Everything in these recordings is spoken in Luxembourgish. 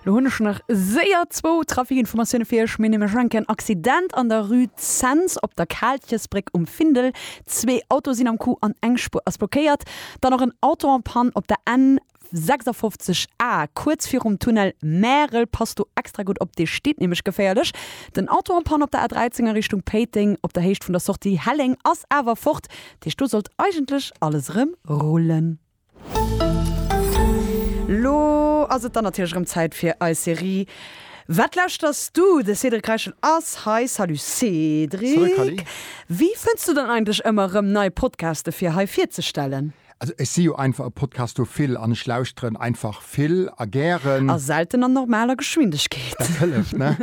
Lo hunn ech nach séier zwou Trafikinformatioune fir Iech. Mir hunn nämlech eng Kéier en Accident an der Rue Zens op der Kaaltjesbréck um Findel. Zwee Autoe sinn am Coup an eng Spuer ass blockéiert. Dann och en Auto en panne op der N 56 A, kuerz virum Tunnel Märel. Passt do extra gutt op, dee steet nämlech geféierlech. Den Auto en panne op der A 13 a Richtung Péiteng op der Héicht vun der Sortie Helleng ass awer fort. Dat heescht, do sollt eigentlech alles erëm rullen. Lo ass et dann natierlech erëm Zäit fir eis Serie Wat lauschters du? De Cédric Reichel ass hei. Salut Cédric, wéi fënns du dann eigentlech ëmmer erëm nei Podcaste fir hei virzestellen? Also ech si jo einfach e Podcastophil an ech lauschteren einfach vill a gären. A selten an normaler Geschwindegkeet. Dat hëlleft, ne?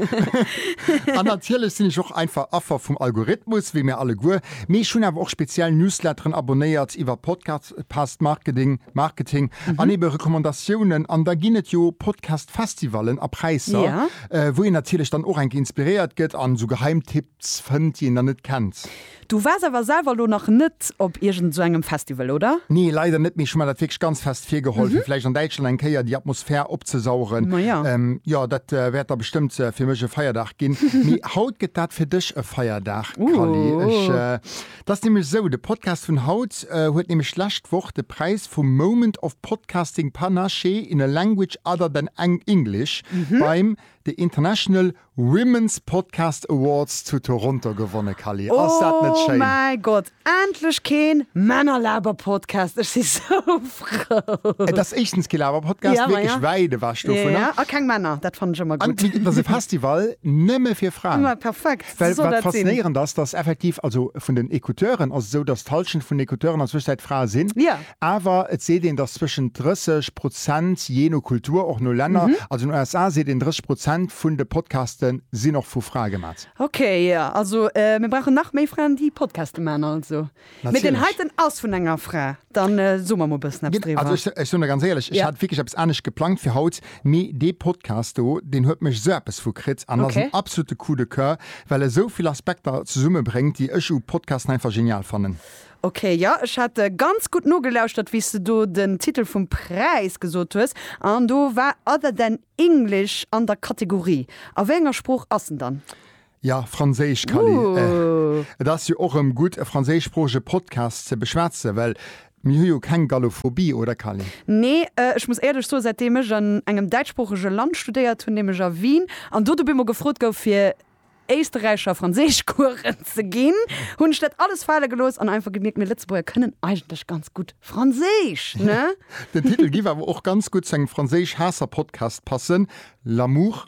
An natierlech sinn ech och einfach Affer vum Algorithmus, wéi mir alleguer. Mee ech hunn awer och speziell Newsletteren abonéiert iwwer Podcasts. Podcast, Past Marketing, Marketing an ebe Recommandatiounen. An da ginn et jo Podcast-Festivalen a Präisser, Ja. äh, wou een natierlech dann och enke inspiréiert gëtt an esou Geheimtipps fënnt, déi een dann net kennt. Du waars awer selwer elo nach net op iergend esou engem Festival, oder? Nee, leider net, mee ech hu mer dat wierklech ganz fest virgeholl, fir vläicht an Däitschland eng Kéier déi Atmosphär opzesaugen. Mhm. Ma ja. Ähm, jo, dat äh, wäert da bestëmmt äh, fir mech e Feierdag ginn. Mee haut gëtt dat fir dech e Feierdag, Callie. Ech, äh, Dat ass nämlech esou, de Podcast vun haut huet nämlech d'lescht Woch de Präis vum Moment of Podcasting Panache in a Language Other than English beim The International Women's Podcast Awards zu Toronto gewonne, Cally. Ass dat net schéin? Oh mäi Gott, endlech keen Männerlaberpodcast, ech si sou frou. Et ass éischtens kee Laberpodcast, Ja, wierklech maja. wäit ewech dovunner. A keng Männer, dat fannen ech ëmmer An gutt. et ass e Festival nëmme fir Fraen. Immer perfekt. Well wat faszinéierend ass, dass effektiv, also vun den Ecouteuren ass et esou, dass d'Hallschent vun den Ecouteuren an Zwëschenzäit Frae sinn, awer et seet een, dass zwëschen 30 Prozent, jee no Kultur, och no Länner, also an den USA seet een 30 Prozent vun de Podcaste sinn och vu Frae gemat. Okay, jo, also mir brauchen nach méi Fraen, déi Podcaste maachen also. Mee deen heiten ass vun enger Fra, dann so mer mol bëssen eppes driwwer. Also ech soen der ganz éierlech, ech hat wierklech eppes anescht geplangt fir haut, mee dee Podcast do, deen huet mech sou eppes vu kritt an ass en absolute Coup de Coeur, well e souvill Aspekter zesumme bréngt, déi ech u Podcasten einfach genial fannen. Ok, jo, ech hat ganz gutt nogelauschtert, wéi s de do den Titel vum Präis gesot hues, an do war Other than English an der Kategorie. A wéi enger Sprooch ass en dann? Ja, Franséisch, Kally, eh. Et ass jo och erëm gutt, e franséischsproochege Podcast ze beschwätzen, well mir hu jo keng Gallophobie, oder Kally? Nee, ech muss éierlech soen, säitdeem ech an engem däitschsproochege Land studéiert hunn, nämlech a Wien, an do de Bimo gefrot gouf, fir Éisterräicher Franséischcoursen ze ginn, hunn ech dat alles fale gelooss an einfach gemierkt, mir Lëtzebuerger kënnen eigentlech ganz gutt Franséisch, ne? Den Titel giff awer och ganz gutt zu engem Franséisch-Haasser-Podcast passen, L'amour.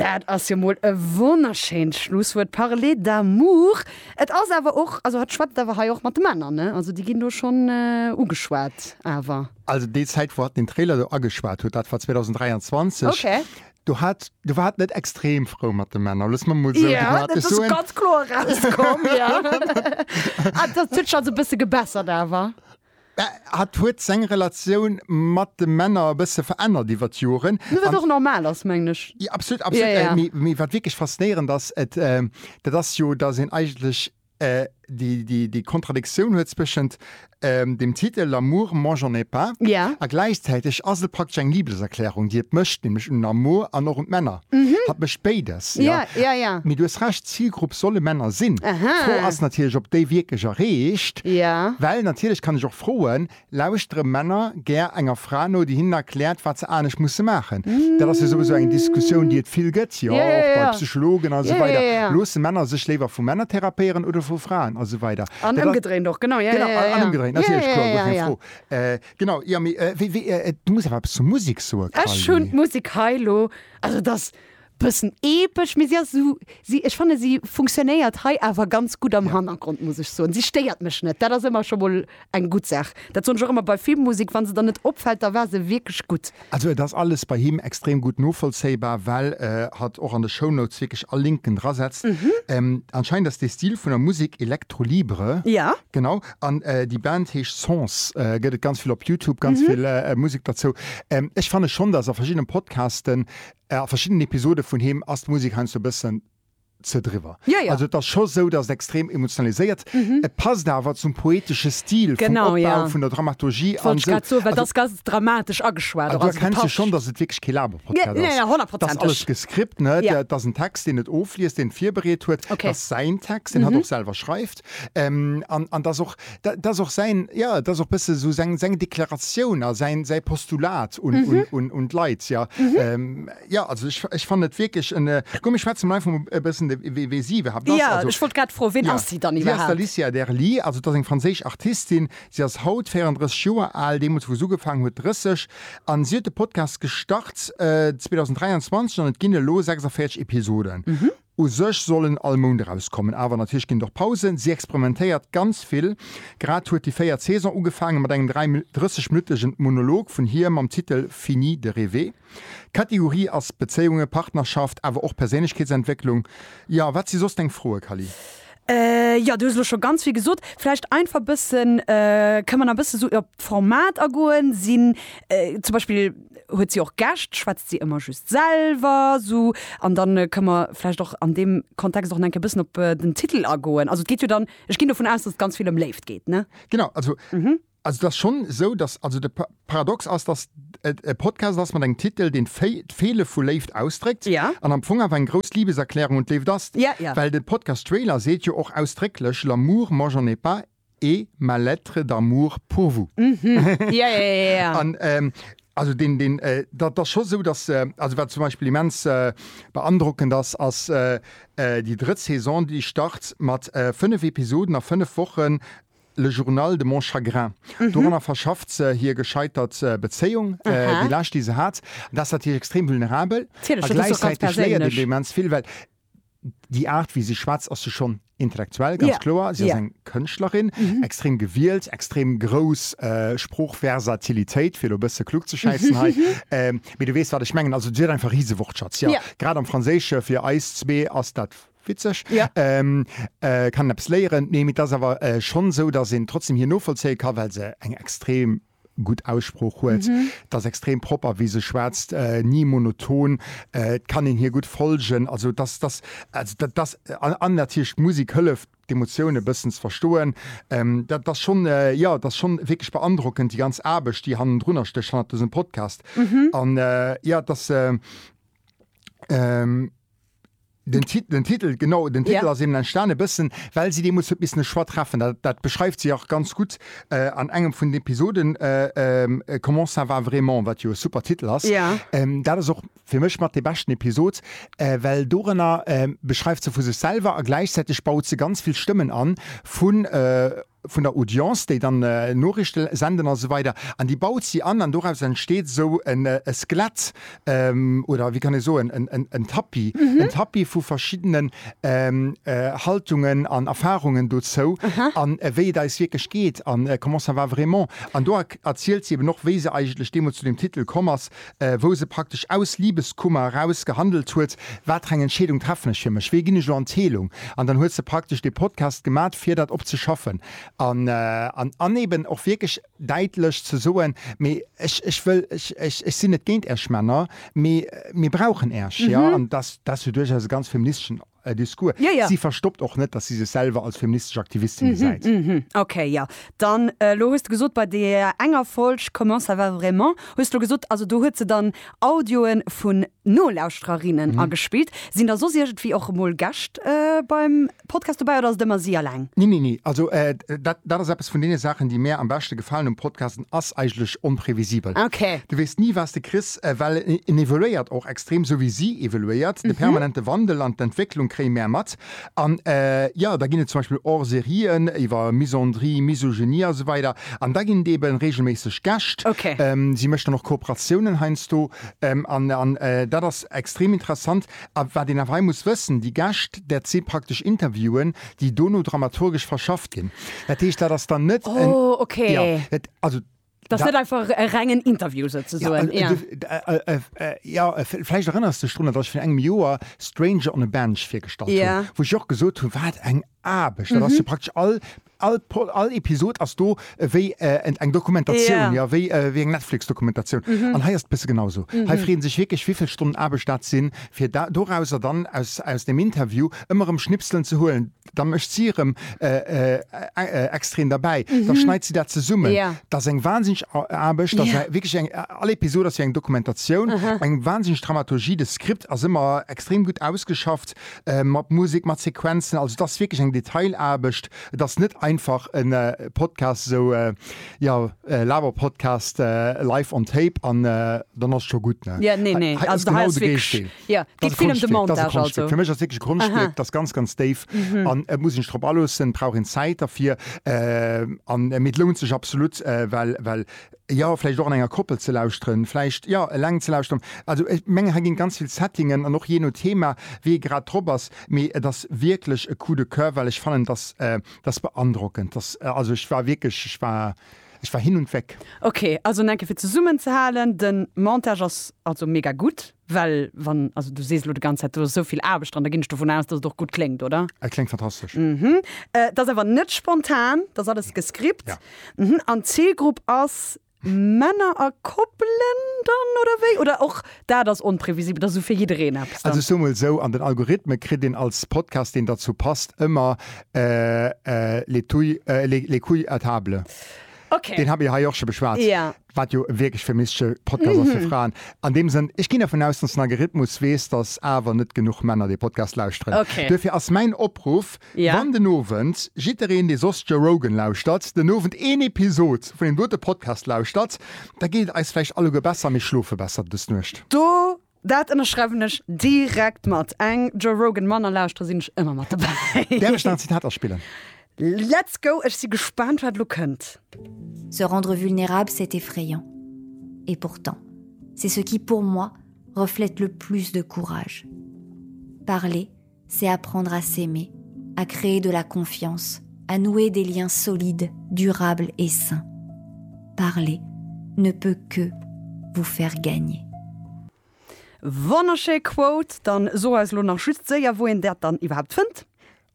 Dat ass jo mol e wonnerschéint Schlusswuert, parler d'amour. Et ass awer och, also hatt schwätzt awer hei och mat de Männer, ne? Also déi ginn do schonn ugeschwat awer. Also déi Zäit wou hatt den Trailer do ageschwat huet, dat war 2023. Ok. Do hat, do war hatt net extrem frou mat de Männer, loosse mer mol esou diplomatesch soen. Jo, dat ass ganz kloer erauskomm, jo. Ah, dat huet sech also e bësse gebessert awer. Hat huet seng Relatioun mat de Männer e bësse verännert iwwer d'Joren. Mee wat och normal ass, mengen ech. Jo, absolut, absolut. Mee wat wierklech faszinéierend ass, dat ass jo, datt een eigentlech déi Kontradiktioun huet zwëschent dem Titel L'amour, moi j'en ai pas a gläichzäiteg ass et praktesch eng Libeserklärung, déi et mécht, nämlech un den Amour an och un d'Männer. Hat mécht béides. Mee du hues Recht. Zilgrupp solle Männer sinn. D'Fro ass natierlech, ob déi wierklech erreecht. Well natierlech kann ech och froen, Lauschtere Männer gär enger Fra no, déi hinnen erkläert, wat se anescht musse maachen? Dat ass jo souwisou eng Diskussioun, déi et vill gëtt, jo, och bei Psychologen a sou weider. Loosse Männer sech léiwer vu Männer therapéieren oder vu Fraen a sou weider? An ëmgedréint och, genau. Jo, jo, jo. An ëmgedréint, natierlech, kloer, guer keng Fro. Genau, jo, mee wéi, wéi, du muss awer eppes zur Musik soen, Carly. Ech hunn d'Musik hei elo, also et ass Bëssen epesch, mee si ass esou, si, ech fanne si funktionéiert hei awer ganz gutt am Hannergrond, muss ech soen. Si stéiert mech net, dat ass ëmmer scho mol eng gutt Saach. Dat soen ech och ëmmer bei Filmmusek, wa se der net opfält, da war se wierklech gutt. Also et ass alles bei him extrem gutt novollzéibar, well hatt och an de Shownotes wierklech all Linken drasetzt. Anscheinend ass dee Stil vun der Musek Electro Libre. Jo. Genau. An déi Band heescht Sons. Gëtt et ganz vill op Youtube, ganz vill Musek derzou. Ech fanne schonn, dass a verschiddene Podcasten A verschiddenen Episode vun him ass d'Musek heiansdo e bëssen ze driwwer. Jo, jo. Also et ass scho esou, datt et extrem emotionaliséiert. Et passt awer zum poetesche Stil vum Opbau. Genau, jo. Vun der Dramaturgie an esou. Wollt ech grad soen, well et ass ganz dramatesch ageschwat och. Also du erkenns jo schonn, datt et wierklech kee Laberpodcast ass. Nee, nee, honnertprozenteg. Et ass alles gescript, ne? Jo. Et ass en Text, deen et ofliest, deen et virbereet huet. Okay. Et ass säin Text, deen hatt och selwer schreift. geguckt. Ähm, an, an dass och, dat ass och säin, ja, dat ass och bësse esou seng, seng Deklaratioun a säin, säi Postulat un, un, un, un d'Leit, ja. Ähm, ja, also ech, ech fannen et wierklech en, äh, komm, mir schwätzen emol einfach emol e bëssen, de, wee, wee si iwwerhaapt ass. Ja, Also, ech wollt grad froen, ween ja, ass si dann si ass iwwerhaapt? d'Alicia Derli, also dat ass eng franséisch Artistin. Si ass haut 34 Joer al, deemools wou se ugefaangen huet 30, an si huet de Podcast gestart, äh, 2023 an et ginn elo 46 Episoden. U sech soll en all Mount erauskommen, awer natierlech ginn et och Pausen. Si experimentéiert ganz vill. Grad huet déi véiert Saison ugefaangen, mat engem 30 minuttegen Monolog vun hir mam Titel Fini de rêver. D'Kategorie ass Bezéiunge, Partnerschaft, awer och Perséinlechkeetsentwécklung. Jo, wat si soss deng Froe, Kally? Jo, du hues elo scho ganz vill gesot. Vläicht einfach bëssen, kënne mer nach e bësse sou op d'Format agoen? Sinn zum Beispill, huet si och Gäscht? Schwätzt si ëmmer just selwer sou? An dann kënne mer vläicht och an deem Kontext och nach eng Kéier e bëssen op den Titel agoen. Also et geet jo dann, ech ginn dovun aus, datt et ganz vill ëm Léift geet, ne? Genau, also Also et ass schonn esou, datt, also de Paradox ass, datt et e Podcast ass mat engem Titel, deen d'Feele vu Léift ausdréckt Ja. an am Fong awer eng grouss Libeserklärung un d'Léift ass, Ja, ja. well de Podcast-Trailer seet jo och ausdrécklech, L'amour, moi j'en ai pas et ma lettre d'amour pour vous. Ja, ja, ja, ja. An ähm, also deen, deen, äh, dat ass scho sou, datt, äh, also wat zum Beispill immens äh, beandrockend ass, ass äh, äh, déi drëtt Saison, déi start mat äh, fënnef Episoden a fënnef Wochen, Le Journal de mon chagrin. Doranner verschafft se hir gescheitert Bezéiung, déi lescht, déi se hat. Dat ass natierlech extrem vulnerabel. A gläichzäiteg léiert een immens vill, well déi Aart, wéi si schwätzt, ass jo schonn intellektuell, ganz kloer. Si ass eng Kënschtlerin, extrem gewielt, extrem grouss Sproochversatilitéit, fir elo e bësse klugzeschäissen hei. Mee du weess, wat ech mengen. Also si huet einfach e Risewortschatz, jo. Grad am Franséische, fir eis zwee ass dat Witzeg. Ja. Ee kann eppes léieren. Nee, mee et ass awer schonn esou, datt een trotzdem hir novollzéie ka well se eng extrem gutt Aussprooch huet. Et ass extrem propper, wéi se schwätzt, ni monoton. Et kann een hir gutt folgen. Also et ass, et ass, also dat ass, an natierlech d'Musek hëlleft, d'Emotioun e bëssen ze verstoen. Dat ass schonn, jo, et ass schonn wierklech beandrockend, déi ganz Aarbecht, déi hannendrunner stécht, hannert dësem Podcast. An jo, et ass, Den Ti-, den Titel, genau, den Titel ass eben entstanen e bëssen, well si deemools huet missen e Choix treffen. Dat, dat beschreift si och ganz gutt an engem vun den Episoden, Comment ça va vraiment? wat jo e super Titel ass. Dat ass och fir mech mat dee beschten Episod, well doranner beschreift se vu sech selwer a gläichzäiteg baut se ganz vill Stëmmen an vun vun der Audience, déi dann Noriichte senden a sou weider an déi baut si an an doraus entsteet esou e Skelett oder wéi kann ee soen en Tapis, en Tapis vu verschiddenen Haltungen an Erfarungen dozou an wéi et eis wierklech geet an comment ça va vraiment. An do erzielt si eben och, wéi se eigentlech deemools zu deem Titel komm ass, wou se praktesch aus Liebeskummer eraus gehandelt huet, watereng Entscheedung treffen ech fir mech, wéi ginn ech elo an d'Heelung, an dann huet se praktesch dee Podcast gemat fir dat op ze schaffen an an eben och wierklech däitlech ze soen, mee ech ech wëll ech ech sinn net géint Äerch Männer, mee mir brauchen Äerch, jo, an dat ass jo duerchaus e ganz feministeschen. Discours. Si verstoppt och net, datt si sech selwer als feministesch Aktivistin gesäit. Ok, jo. Dann, elo hues de gesot, bei deeër enger Folg Comment ça va vraiment? hues de gesot, also do huet se dann Audioe vun Nolauschtererinnen agespillt. Sinn da soss iergendwéi och emol Gäscht beim Podcast dobäi oder ass et ëmmer si alleng? Nee, nee, nee. Also dat ass eppes vun deene Saachen, déi mär am beschte gefalen um Podcast, en ass eigentlech onprevisibel. Du weess ni, wat s de kriss, well en evoluéiert och. Extrem, sou wéi si evoluéiert. De permanente Wandel an d'Entwécklung kréie mär mat. An jo, da ginn et zum Beispill Hors-sérien iwwer Misandrie, Misogynie a sou weider. An da ginn et eeben reegelméisseg Gäscht. Si mécht dann och Kooperatiounen heiansdo. An dat ass extrem interessant. A wat een awer hei muss wëssen, déi Gäscht, dat si praktesch Interviewen, déi dono dramaturgesch verschafft ginn. Dat heescht, dat ass dann net en, jo, dat, also. Dass net einfach e rengen Interview souzesoen. Ja, ja. Ja, vläicht erënners dech drun, datt ech vir engem Joer Stranger on a Bench virgestallt hunn. Yeah. Wou ech och gesot hunn, wat eng Aarbecht dat ass. Jo, praktesch all, all Pod, all Episod ass do ewéi eng Dokumentatioun, Yeah. jo, wéi, wéi eng Netflix-Dokumentatioun. An hei ass et e bësse genau esou. Hei freeën sech wierklech, wivill Stonnen Aarbecht dat sinn, fir da, dorauser dann, aus, aus deem Interview ëmmer erëm Schnipselen ze huelen, da mécht si erëm extrem derbäi, da schneit si dat zesummen. Dat ass eng wahnsinneg Aarbecht, dat ass wierklech eng, all Episod ass wéi eng Dokumentatioun, eng wahnsinneg Dramaturgie, de Skript ass ëmmer extrem gutt ausgeschafft, mat Musek, mat Sequenzen, also et ass wierklech eng Detailaarbecht. Et ass net einfach e Podcast esou, jo, e Laberpodcast live on tape an dann ass scho gutt, ne? Hei ass genau de Géigendeel. Ja, geet vill ëm de Montage also. Fir mech ass wierklech e Konschtwierk, dat ass ganz, ganz déif an et muss een sech drop aloossen, brauch een Zäit derfir. An, mee et lount sech absolut, well, well, jo, vläicht och an enger Koppel ze lauschteren, vläicht, jo, eleng ze lauschteren. Also ech mengen, hei ginn ganz vill Settingen an och jee no Thema, wéi ee grad drop ass, mee et ass wierklech e Coup de coeur, well ech fannen, et ass, et ass beandrockend. Et ass, also ech war wierklech, ech war, ech war hin und weg. Ok, also nach eng Kéier fir zesummenzehalen, de Montage ass also mega gutt. Well wann, also du sees elo de ganz Zäit, do ass esou vill Aarbecht dran, da ginn ech dovun aus, dass et och gutt kléngt, oder? Et kléngt fantastesch. Et ass awer net spontan, et ass alles gescript. An d'Zilgrupp ass Männer a Koppelen dann, oder wéi? Oder och dat ass onprevisibel, et ass esou fir jiddereen eppes dann? Also ech soe mol esou, an den Algorithme kritt een als Podcast, deen derzou passt, ëmmer les couilles à table. Deen hu mir hei och scho beschwat. Wat jo e wierklech femistische Podcast ass fir Fraen. An deem Sënn, ech ginn dervun aus, dass den Algerithmus weess, dass awer net genuch Männer dee Podcast lauschteren. Duerfir ass mäin Opruff, Wann den Owend jiddereen, dee soss Joe Rogan lauschtert, den Owend een Episod vun deem dote Podcast lauschtert, da geet et eis vläicht alleguer besser a mir schlofe besser des Nuecht. Do Dat ënnerschreiwen ech direkt mat. Eng Joe Rogan Manner lauschteren sinn ech ëmmer mat dobäi. Däerf ech nach en Zitat aspillen? Let's go, ech si gespaant wat lo kënnt. Se rendre vulnérable c'est effrayant. Et pourtant, c'est ce qui pour moi reflète le plus de courage. Parler, C'est apprendre à s'aimer, à créer de la confiance, à nouer des liens solides, durables et sains. Parler ne peut que vous faire gagner. Wonnerschéi Quote, dann so eis lo nach just séier wou een dat dann iwwerhaapt fënnt.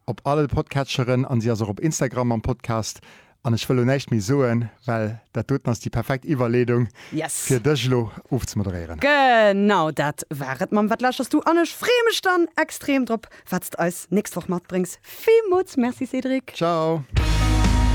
Op alle Podcatcheren an si ass och op Instagram mam Podcast An ech wëll elo näischt méi soen, well dat doten ass déi perfekt Iwwerleedung, Yes! fir dech elo ofzemoderéieren. Genau dat war et! Mam Wat laaschers du? An ech freeë mech dann extrem drop, wat s de eis nächst Woch matbréngs. Villmools Merci, Cédric! Ciao!